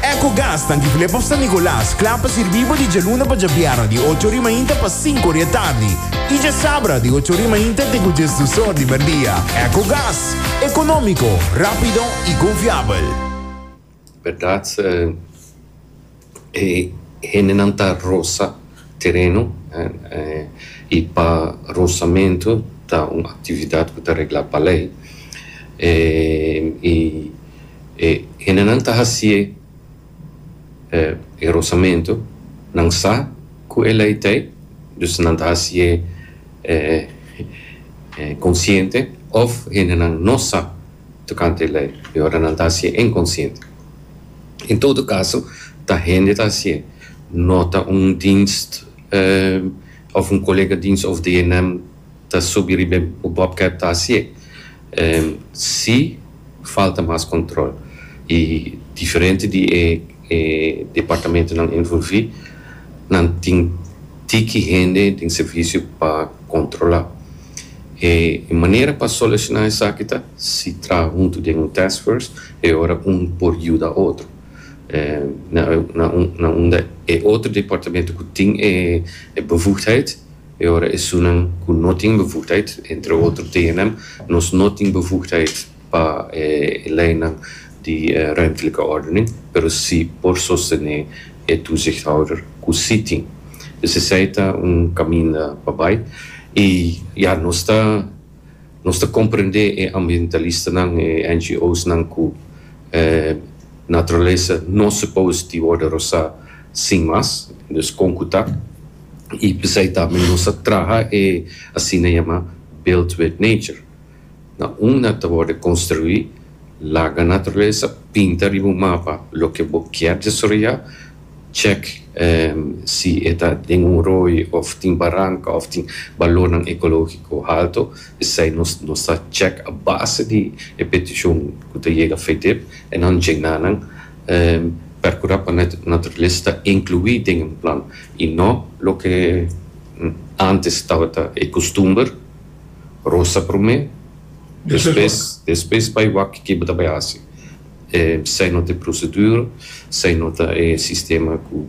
Ecogas ta Antigulé pa San Nicolas, kla pa sirbí bo di djaluna pa djabierna di ocho ori mainta pa sinku ori e tardi i djasabra di ocho ori mainta te ku djes dus or di merdia. Ecogas, ekonómiko, rápido i konfiabel. Berdad se e hendenan ta rosa tereno i pa rosamentu ta un aktividat ku ta reglá pa lei. I E hendenan ta hasié e rosamentu, nan sa ku e lei t'ei, dus nan ta hasié konsiente òf hendenan no sa tokante e lei i ora nan ta hasié inkonsiente. En todo kaso ta hende ta hasié, no ta un dienst òf un kolega dienst òf di hennan ta subi riba e bobcat ta hasié. Si Falta mas control y diferente di e departamentonan envolvi nan tin tiki hende den servicio pa controla. E manera pa soluciona esaki ta si traha hunto den un task force e ora un por yuda otro na unda e otro departamento cu tin e bevoegdheid. E ora esunnan ku no tin bevoegdheid, entre otro tehenan, nos no tin bevoegdheid pa e leynan di ruimtelijke ordening, pero sí por sostené e toezichthouder ku sí tin. Dus esei ta un kaminda pa bai. I ya, nos ta nos ta komprendé e ambientalistanan, e NGOsnan ku naturalesa no supos di wòrdu rosá sin mas. Dus kon ku ta? y p'esey tambe nos a traha e asina yama Built with Nature. Na un na ta worde construi, laga naturalesa, pinta riba un mapa loke bo kier desoroya, check si e ta den un rooi of tin baranka of tin balornan ecológico halto, p'esey nos nos ta check a base di e peticion cu ta yega Fedip e nan djina nan percura pa naturalesa ta inclui den un plan y no loke antes tabata e costumber, rosa prome despues despues bay wak kiko bo ta bay haci, sey no ta e procedura, sey no ta e sistema cu